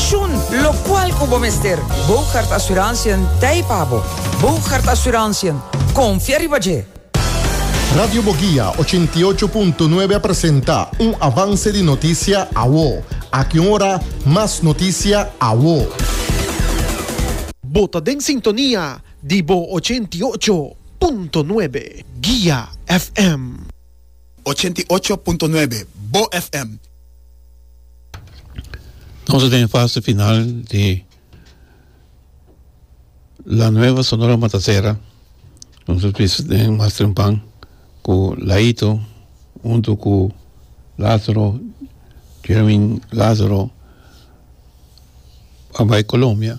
Shun locual cu bo mester. Bougaard Assurantiën ta ei pa bo. Bougaard Assurantiën, confia riba dje! Radio Boguia ochenta i ocho punto nuebe a presenta un avance di noticia awo. Aki un ora mas noticia awo. Bo ta den sintonia di bo ochenta i ocho punto nuebe Guia FM. ochenta i ocho punto nuebe Bo FM. Nos a den e fase final di La Nueva Sonora Matasera. Nos a bisa den Master Mpan ku Laito huntu ku Lazaro, Jeremyn Lazaro, a bai Colombia.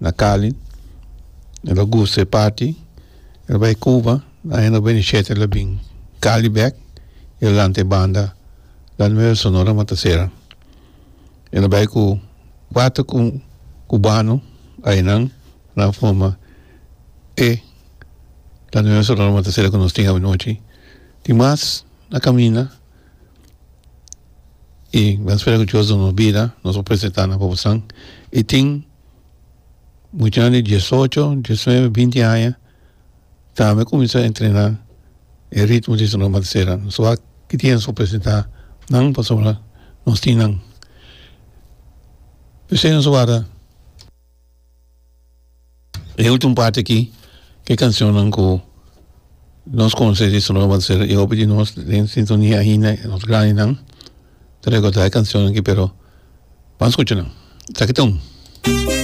Na Cali el a gusta e party el bai Cuba na aña noventa y siete el a bin Cali bek y el a lanta e banda La Nueva Sonora Matacera el a bai cu cuater cubano ayenan nan a forma e La Nueva Sonora Matacera cu nos tin awanochi tin mas na caminda y nan a spera cu Dios duna nos bida nos a presenta nan papasnan y tin. muchanan di diesocho, diesnuebe, binti aña tambe cuminsa entrena e ritmo di Sonora Matancera. Nos wak kidia nos por presenta nan pasobra nos tin nan. P'esei nos a warda e ultimo parti aki e cancionnan cu nos conoce di Sonora Matancera y hopi di nos den sintonia ainda, nos grandinan. Ta recorda e cancionnan aki pero ban scucha nan esaki ta un.